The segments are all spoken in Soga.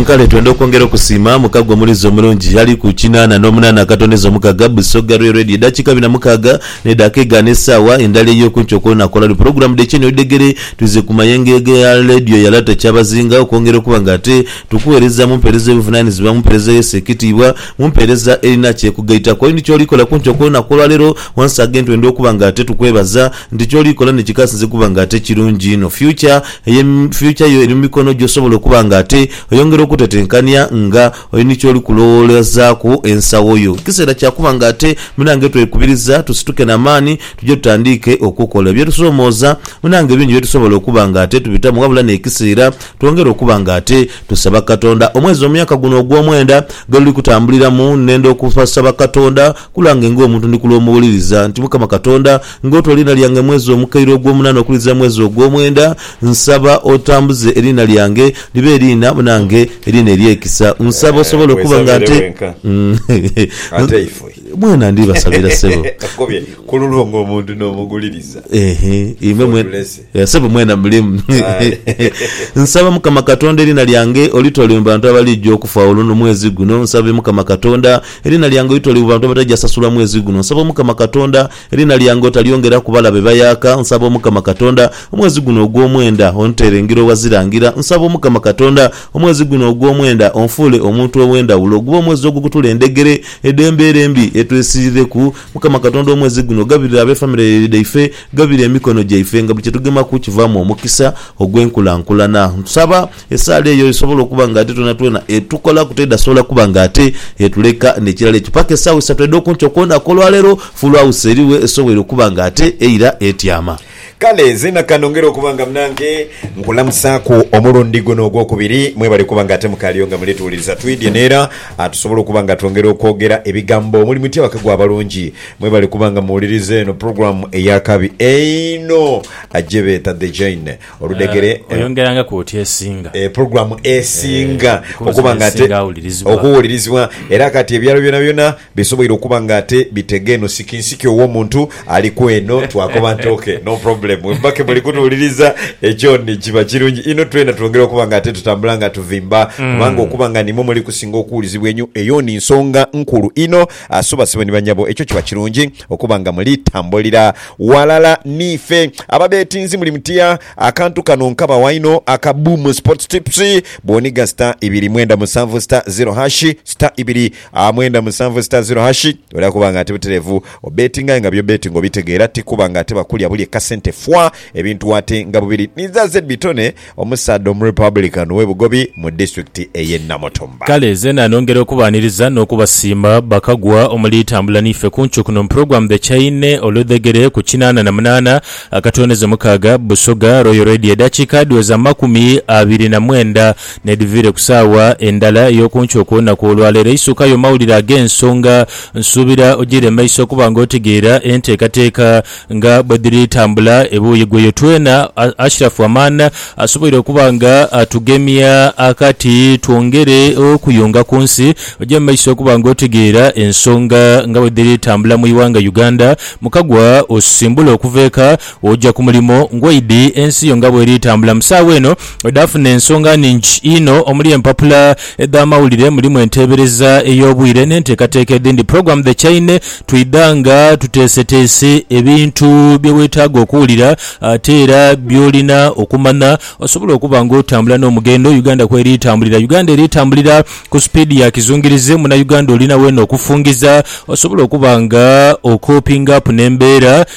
Nkale twenda okwongera okusiima mukago omulizi omulungi ali ku kinaana n'omunaana akatondeza omukaga, Busoga Rue Radio edhakiika abiri na mukaaga n'edhaaka egaana esaawa endala ey'okunkyo okw'onakola ni pulogulaamu dh'Ekyeni Oludhegere twize ku mayengeege ya Leediyo ya Lata Kyabazinga okwongera okuba nga ate tukuweereza mu mpeereza ey'obuvunaanyizibwa, mu mpeereza ey'esa ekitiibwa, mu mpeereza erina ky'ekugaitaku. Oli ni ky'oliikola kunkyo okw'onaku olwaleero? Once again twenda okuba nga ate tukwebaza nti ky'oliikola ni kikasinze kuba nga ate kirungi inho. Future. Eyo fyucha yo eri mu mikono gyo osobola okuba nga ate oyongera okutetenkania nga oli ni ky'oli kulowoolezaaku ensawo yo. Kiseera kya kuba nga ate munange twekubiriza tusituke na maani tuje tutandiike okukola ebyetusoomooza. Munange bingi bye tusobola okuba nga ate tubitamu wabula n'ekiseera twongere okuba nga ate tusaba Katonda. Omwezi omuyaka guno ogw'omwenda gweluli kutambuliramu nnenda okusaba Katonda Ku lwange ng'omuntu ndi kulw'omuwuliriza nti Mukama Katonda, ng'oota oliina lyange mwezi omukaire ogw'omunana okulizira mwezi ogw'omwenda, nsaba otambuze eriina lyange libe eriina munange eriina ery'ekisa. Nsaba osobole okuba nga nte. Mwena ndibasabira, ssebo. Eeh, imwe mwena. Eeh sebo mwena mulimu Nsaba mukama katonda erina lyange olitolwe mubantu abalija okufa olwo no mwezi guno nsabe mukama katonda erina lyange olitolwe mubantu abataja sasulwa mwezi guno nsaba omukama katonda erina lyange otalyongera kubala bebayaka nsaba omukama katonda omwezi guno ogwomwenda ontere ngira owazira ngira nsaba omukama katonda omwezi guno ogwomwenda onfuule omuntu owendawulo gube omwezi ogukutula endegere edembera embi etwesirireku mukama katonda omwezi guno gabirira abefamire dhaife Ghabire emikono gyaife nga buli kye tugemaku kivaamu omukisa ogw'enkulankulana. Nsaba esaala eyo esobole okuba nga ate twonatwona etukolaku teedhasobola kuba nga ate etuleka. N'ekirala ekyo, paka esaawa isatu edh'okunkyo kwonaka olwaleero, Full House eriwe esobwoire okuba nga ate eira etyama. Kale nzena ka nongere okuba nga munange nkulamusaaku omulundi guno ogwokubiri. Mwebale kuba nga ate mukaaliyo nga muli tuwuliriza. Twidhye n'era tusobole okuba nga twongera okwogera ebigambo omuli muti abakago abalungi Mwebale kuba nga muwuliriza eno program eyakabi einho ajebeeta The Jaine oludhegere. Oyongerangaku oti esinga. E program esinga okuba nga ate okuwulirizibwa era kati ebyalo byona byona bisoboire okuba nga ate bitega eno sikinsiki owomuntu ali kweno twakoba nti ok no problem wemuba kemuli kutuwuliriza ekyoni kiba kirungi inho twena twongere okuba nga ate tutambula nga tuvimba kubanga okuba nga nimwo muli kusinga okuwulizibwa enyo eyoni nsonga nkulu inho Asubasibwe ni banyabo ekyo kiba kirungi okuba nga muli tambulira ghalala niife. Ababetinzi muli mutya? Akantu kano nkabawa inho aka Boom Sports Tips. Bwoniga star ibiri mwenda musanvu star zero hash, star ibiri mwenda musanvu star zero hash, oja kuba nga ati buterevu obetinga aye nga by'obetinga obitegeera ti kuba nga ate bakulya bulye kasente fwaa ebintu ate nga bubiri. Ni za Zebitone. Omusaadha Omurepublican w'e Bugobi mu disitulikiti ey'e Namutumba. Kale zeena nongera okubaaniriza n'okubasiima bakagwa omuli Tambula N'ife ku Ncu kuno mu pulogulaamu The Chaine olwedhegere ku kinaana na munaana akatooneze mukaaga, Busoga Royal Radio edhakiika dhiweza amakumi abiri na mwenda n'edhiviire ku saawa endala ey'oku nkyo ku lunaku olwaleero. Eisukayo mawulire ag'ensonga. Nsuubira ogiire mu maiso okuba nga otegeera enteekateeka Nga bwe dhiri tambula ebuuyi ghoyo twena, Ashraf Aman asoboire okuba nga atugemya akati twongere okuyunga ku nsi. Oja mu maiso okuba nga otegeera ensonga nga bwe dhiri tambula mu ighanga Uganda. Mukagwa osimbula okuva eka oja ku mulimo, ngoidi ensi yo nga bweri tambula mu saagha eno. Dhaafuna ensonga nnhingi inho omuli empapula edh'amawulire, mulimu enteebereza ey'obwire n'enteekateeka edhindi. Pulogulaamu The Chaine twidha nga tuteeseteese ebintu bye weetaaga okuwulira ate era by'olina okumanya osobole okuba ng'otambula n'omughendo Uganda kw'eri etambulira. Uganda eri etambulira ku sipiidi ya kizungirizi. Munauganda olina weena okufungiza osobole okuba nga okoopinga apu n'embeera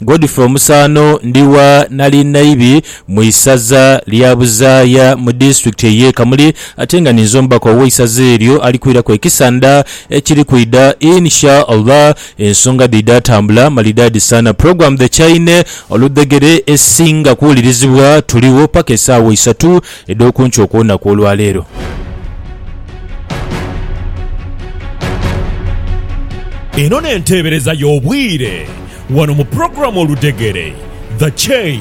Godfrey Omusaano ndi wa Nalinayibi mu isaza lya Buzaaya mu disitulikiti ey'e Kamuli ate nga ninze omubaka ow'eisaza eryo ali kwiraku ekisa ndha ekiri kwidha In Sha Allah ensonga dhidha tambula malidaadi saana Program The Chaine oludhegere esinga kuwulirizibwa Tuligho paka esaawa isatu edh'okunkyo okw'olunaku olwa leero. Eno n'enteebereza y'obwire. Wano mu pulogulaamu Oludhegere, The Chain.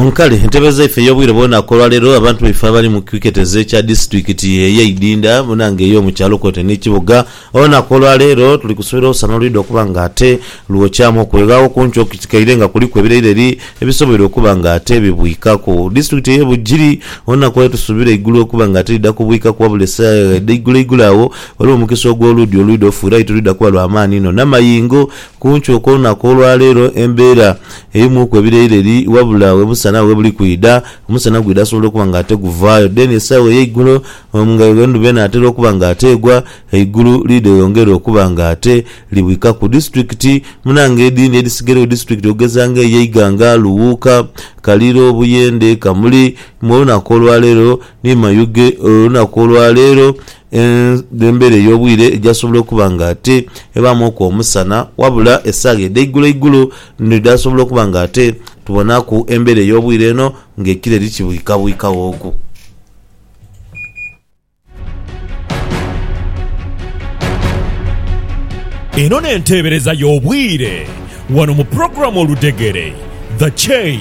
Nkale entebe zaife ey'obwire bwona ku olwaleero abantu baife abali mu kiketezo ekya disitulikiti ey'e Idinda munaanga ey'omu kyalo kwotaire n'ekibuga hoona ku olwaleero tuli kusuubira olusana olwidha okuba nga ate lwokyaamu okweghagho ku nkyo kitikaire nga kuliku ebiraileri ebisoboire okuba nga ate bibwikaku. Disitulikiti ey'e Bugiri hoona kwali tusuubira eigulu okuba nga ate lidha kubwikaku wabula esaagha edha igulo igulo agho Olwo omukisa ogw'oluudi olwidha ofuirayo tirwidha kuba lwa maani inho n'amayengo. Ku nkyo okw'olunaku olwa leero embeera eimwuku ebireireri wabula we musana we buli kwidha. Omusana gwidha asobola okuba nga ate guvaayo deni esaawa ey'eigulo nga endhuba enaatera okuba nga ate egwa, eigulu liidhe lyongere okuba nga ate libwikaku. Disitulikiti munange edhindi edhisigairagho disitulikiti okugeza nga ey'e Iganga, Luwuuka, Kaliro, Buyende, Kamuli mu olunaku olwa leero ni Mayuge olunaku olwa leero Embera ey'obwire egyasobola okuba nga ate ebaamu oku omusana, wabula esaagha edh'eiguloigulo ndho dhasobola okuba nga ate tubonaku embera ey'obwire eno ng'ekire likibwikabwikaghooku. Eno n'enteebereza y'obwire wano mu pulogulaamu Oludhegere, The Chain.